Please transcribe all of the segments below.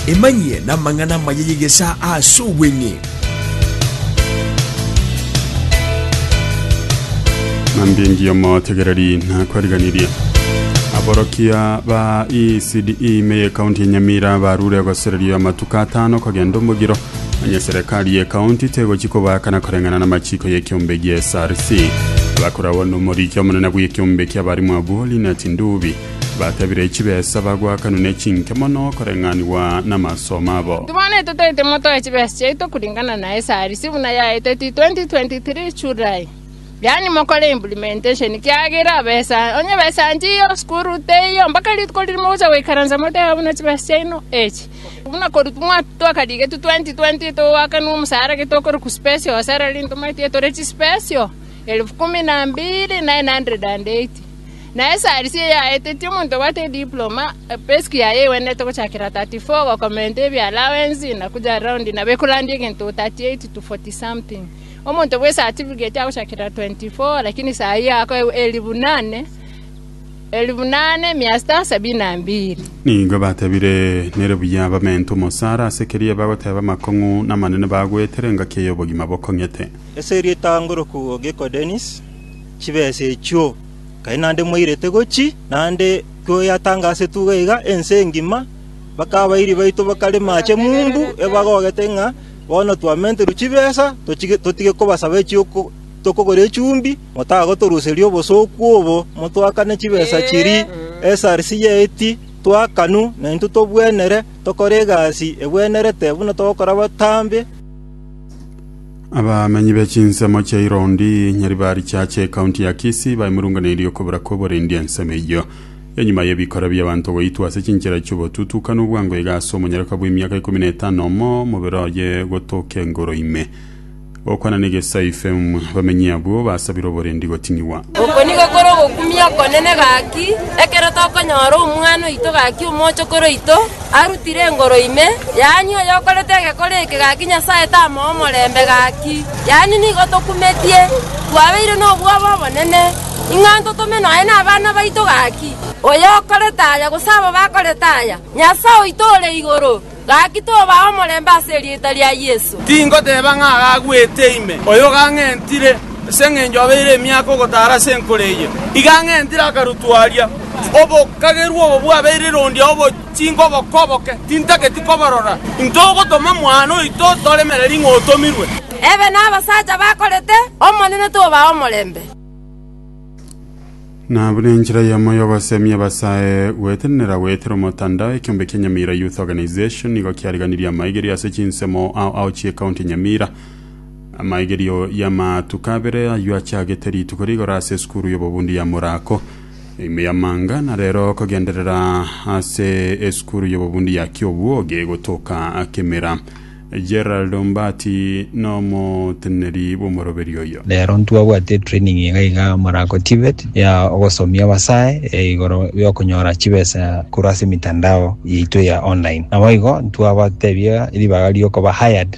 Emanyie namang'ana amaya y'egesaa aase obweng'e. Mambingi omotegereri nakwariganirie aborokia ba ECDE ime y'ekaunti ya Nyamira barure gosereria amatuko atano kogenda omogiro onye serikali y'ekaunti tegochi kobaakana koreng'ana n'amachiko y'ekiombe gi'SRC abakoragwa nomoriki omonene bw'ekiombe ki'abarimu abwo Linnet Ndubi Batabire chibesa, bagwakanwa ne chinke mono koreng'anigwa namasomo abo. Inki bono etotaete moto ya chibesa chiaito kuringana na esaarisi buna yaeteti 2023 July? Yaani mokore implementation kiagera abesa onye besa nchiyo sukuru teiyo mpaka rituko riri mogocha goikaransa moteba buna chibesa chiaino echi buna korutwa mwatu twakarigetwe 2020 togwakanwa omusara getokorokwa special salary ntomanyeti etore chispecial elfu kumi na mbiri 980 Na esarisi eyaetetie omonto obwate ediploma, epeski yaye egwenerete gochakera 34 gokomenta ebialawensi na kuja raundi nabo ekorandia egento 38 to 40-something. Omonto bw'esatifigeti agochakera 24, lakini saa eye akoegwa elifu nane, elifu nane, mia sita sabini na mbili. Nigo batebire, Nere buya bamente omosara ase keria bagoteba amakong'u namanene bagwetera engaki ey'obogima bokong'ete. Ase erieta ngoroku Gecko Dennis, chibesa echio. Kai naende mwairete gochi, naende tweyatangasie tuge iga ense engima, mpaka abairi baito bakare maache mumbu ebagogete ng'a bono twamenterwe chibesa totige kobasaba echi'oko tokogora echumbi, motagotoruseria obosooku obo motoakane chibesa chiria esarsi y'eiti toakanu naintwe tobwenere tokore egasi egwenerete buna togokora abatambe. abamenyi be chinsemo chia irondi nyari ba richache ekaunti ya kisi baimurunganeirie okobura kw'oborendi ensemo eyio enyuma y'ebikora bi'abanto goitwa ase chinchera chi'obotutu kana obwango iga ase omonyaroka bw'emiaka ikomi na etano omo mobere oye gotoka engoro ime gokwana negesai fm abamenyi abwo basabire oborendi goting'igwa Oko nigo kore ogokumia okonene gaki, ekero tokonyora Omwana oito gaki omochokoro oito, Arutire engoro ime, yaani oyokorete egekore eke gaki Nyasae tamoa omorembe gaki, yaani nigo tokumetie, twabeire nobwabo obonene, ing'a ntotome nonya nabana baito gaki. Oyokorete aya, gose aba bakorete aya, Nyasae oito ore igoro gaki tobaa omorembe ase erieta ria Yeso. Tingoteba ng'a agagwete ime, oyo gang'entire, ase engencho obeire emiaka ogotaara ase enkoro eye, iga ang'entire akarutwa aria. Obokagerwa obo bwabeire rondia obochinga oboko oboke, tintageti koborora. Intwe ogotoma mwane oito toremere ring'o otomirwe. Ebe nabasacha bakorete, Omonene tobaa omorembe. Na buna enchera yamo y'ogosemia ebasae, gwetenenera goetera omotandao ekiombe kia Nyamira Youth Organization nigo kiariganirie amaigerio ase chinsemo ao ao chi'ecounty ya Nyamira. Amaigerio y'amatuko abere ayio achagete rituko rigoro ase esukuru y'obobundi ya Murako. Ime y'amanga na rero kogenderera ase esukuru y'obobundi ya Kiobwoge gotoka Kimera. Gerald Ombati nomoteneneri bw'omoroberio oyo. Rero ntwabwate training iga iga morako TVET ya ogosomia abasae igoro yokonyora chibesa korwa ase emitandao yaito ya online. Naboigo ntwabatebia ribaga riokoba hired.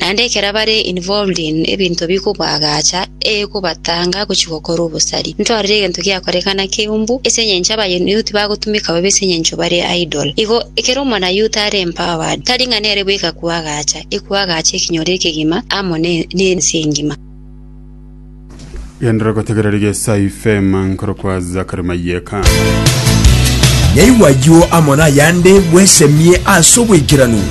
Naende ekero bare involved in ebinto bikobaagacha, ekobatanga gochia gokora obosari. Ntorire egento giakorekana keumbu, ase engencho abayouth bagotumeka bobe ase engencho bare idle. Igo, ekero omonayouth are empowered, tari ng'a nere bweka kwaagacha, ekwaagacha ekenyoro ekegima amo ne nense engima. Genderera gotegereri gesae ifema nkorokwa Zachary Mayeka. Yaigwa ayio amo nayande, bwesemie ase obwekeranu.